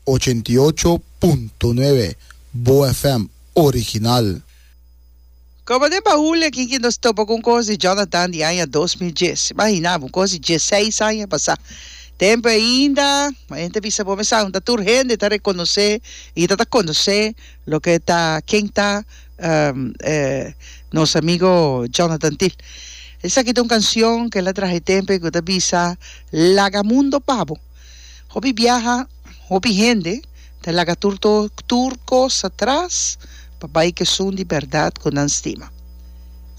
ochenta i ocho punto nuebe Bo FM original. Como den bahul e kin ki nos topa cu un cos di Jonathan di aña dos mil dies. Imagina bo, un cos di dieseis aña pasa. Tempo ainda, como e hende ta bisa bo mesau, no ta tur hende ta reconoce y ta ta conoce. Loke ta ken ta e nos amigo Jonathan Thill. Esaki ta un canción ke la traha e tempe ku ta bisa laga mundo pabo. Hopi biaha, hopi hende ta laga tur to tur kos atras pa bai kesun di berdad ku nan stima.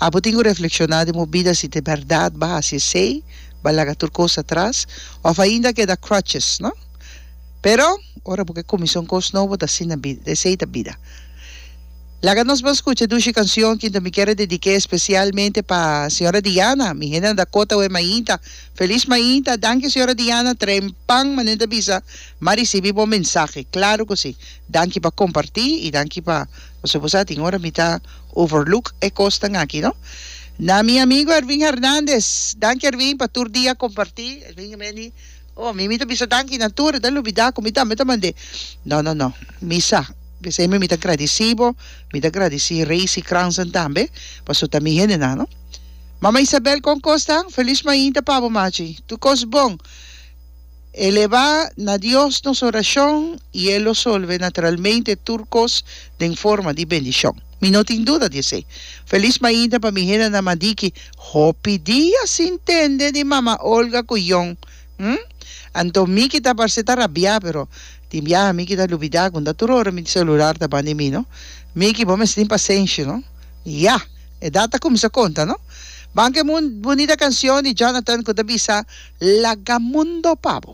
Abo tin ku reflekshoná den bo bida si ta e berdad ba hasi esei, ba laga tur kos atras, of ainda keda crutches, no? Pero, ora bo ke kuminsá un kos nobo, ta asina bida, esei ta bida. Laga nos ban skucha e dushi kanshon Kinto mi kere dedik'é spesialmente pa señora Diana, mi hende nan ta kota awor mainta, Feliz mainta, danki señora Diana, trempan manera ta bisa, m'a risibi bo mensahe, klaro ku si, danki pa kompartí i danki pa, pasobra bo sa tin ora mi ta overlook e kosnan aki no. Na mi amigo Ervin Hernandez, danki Ervin pa tur dia kompartí, Ervin a mende. Oh, mi mi ta bisa danki na tur, e ta lubidá ku mi tambe ta mand'é. No, no, no, mi sa, p'esei mi mi ta gradisí bo, mi ta gradisí Reisi Cransen tambe, paso ta mi hendenan, no? Mama Isabel, Kon kos ta? Feliz mainta pa bo, machi. Tur kos bon. E leba na Dios nos orashon i e lo solve naturalmente tur kos den forma di bendishon. Mi no tin duda di esei. Feliz mainta pa mi hendenan Madiki. Hopi dia sin tende di Mama Olga ku Jon, hm? Anto Miki ta parse ta rabiá, pero tin biaha Miki ta lubidá ku nta tur ora mi selular ta ban di mi, no? Miki, bo mester tin pasenshi, no? Ya! Edad ta kuminsá konta, no? Ban ku e mun bunita kanshon di Jonathan ku ta bisa Laga mundo pa bo.